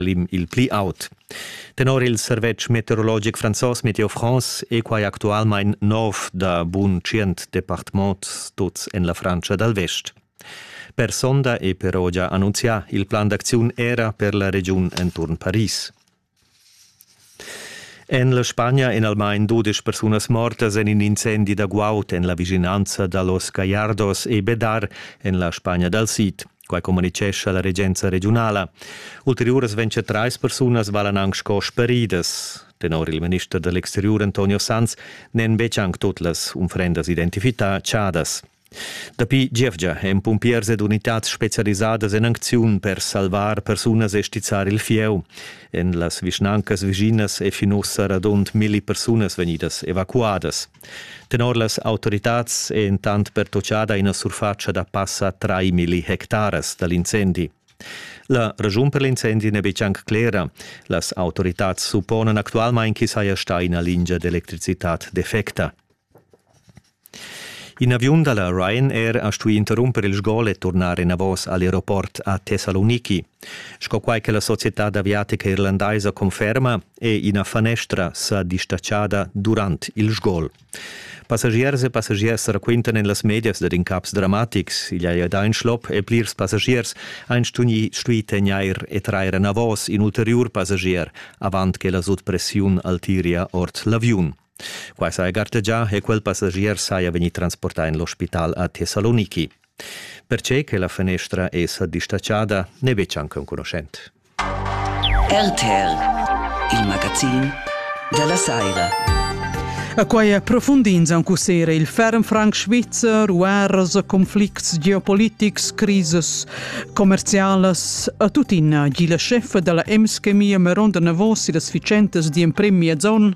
l'im il pli aut. Tenor il servetsch meteorologic franzos Meteo France è quai actualmain nov da bun tschient departements, tuts en la Frantscha dal Vest. Per sonda è però già annunzià il plan d'acziun era per la regiun enturn Paris. En la Spagna èn almain dudesch persunas mortas en in incendi da guaud en la vischinanza da Los Gallardos e Bedar en la Spagna dal Sid. Quai communitgescha la regenza regiunala. Ulteriuras ventg trais persunas valan anc sco speridas. Tenor il minister da l'exteriur Antonio Sanz n'èn betg anc tut las unfrendas identificadadas. Dapi gievgia èn pumpiers ed unitads spezialisadas en acziun per salvar persunas e stizzar il fieu. En las vischnancas vischinas è fin ussa radund milli persunas vegnidas evacuadas. Tenor las autoritads è entant pertutgada ina surfatscha da passa milli hectaras da l'incendi. La raschun per l'incendi n'è betg anc clera. Las autoritads supponan actualmain ch'i saja stà ina lingia d'electricitad defecta. In aviun dalla Ryanair ha stuì interrumper il sgol e turnar enavos all'aeroport a Thessaloniki. Sco quai che la societad aviatica irlandaisa conferma, è ina fanestra sa distatschada durant il sgol. Passagiers e passagiers raquintan en las medias dad incaps dramatics. Igl ei da in schlop e plirs passagiers ein stui tegnair e trair enavos in ulteriur passagier avant che la sutpressiun altiria ord l'aviun. Quai saja gartegià e quel passagier saja vegnì transportà en l'ospital a Thessaloniki. Pertge che la fanestra è sa distatschada n'è betg anc enconuschent. RTL, il magazin della Saira. A quai è profundins aunc ussera il ferm franc svizzer, guerras, conflicts geopolitics, crises commercialas. A tuttina gi la scheffa dalla M-Chemie Meronda Navos e las ficentas d'emprem miezon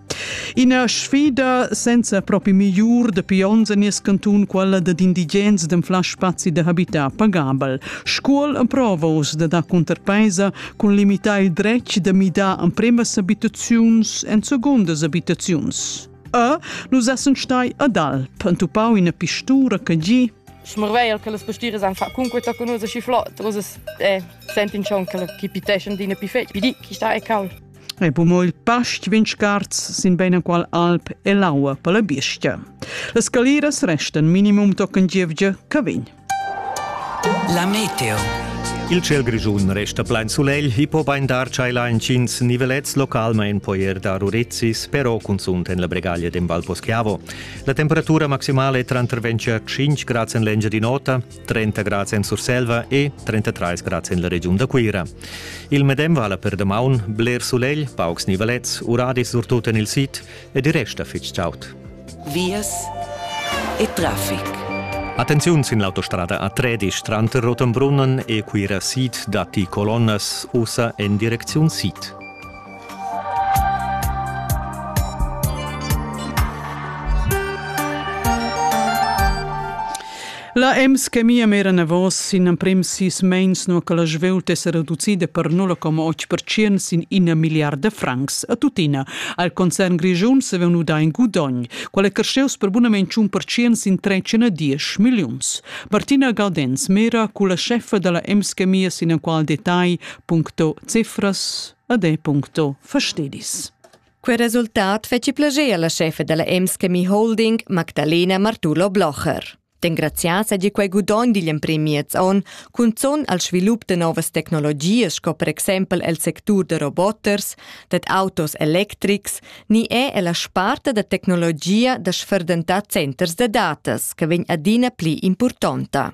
Ina sfida senza propi migliur dapi onns en nies cantun quella dad indigens d'anflar spazi da habitar pagabel. Scuol emprova uss da dar cunterpeisa cun limitar il dretg da midar empremas abitaziuns en segundas abitaziuns. E nus essen stai ad Alp, entupau ina pistura che gi Smrveiel che las pastiras han fatg cunqueta con usa chi flot, usa eh, sentin schon che chi piteschen d'ina pifet, pidi chi sta e cal. e po mo il past vin scarz sin beinaqual alp e l'aua per la biestia. Le scaliras restan minimum tochen gievgia che vegn. La meteo. Il ciel grischun resta plein sulegl e po bein dar tscheila entgins nivelets localmein poi er dar urezis, però cunzunt en la bregaglia d'Embalposchiavo. La temperatura maximale è tranter 25 grad en l'engia di nota, 30 grads en Surselva e 33 grads en la regiun da Cuira. Il medem vala per damaun, bler sulegl, paucs nivalets, uradis surtut en il sid ed i resta fitg chaud. Vias e traffic. Attenziun sin l'autostrada a Tredisch tranter Rotenbrunnen e Cuira Sid datti colonnas ussa en direcziun sid. La EMS che mia mera navos sin emprim sis meins no che la svelt es reducida per 0,8% sin ina miliarda francs a tuttina. Al concern grischun se veun uda in gudogn, quale cresceus per bunament 1% sin 310 milliuns. Martina Galdens mera cu la chefa della EMS che mia sin qual detagl puncto cifras ad e.sto fastedis. Quel resultat feci plager alla chefa della Emskemi Holding, Magdalena Martulo Blocher. D'engrazias hagi quei gudogn digl emprim miez onn, cunzon al svilup de novas tecnologias sco per exempel el sectur de roboters, dad autos electrics, ni è ella sparta da tecnologia da sferdentar centers de datas, che vegn adina pli importanta.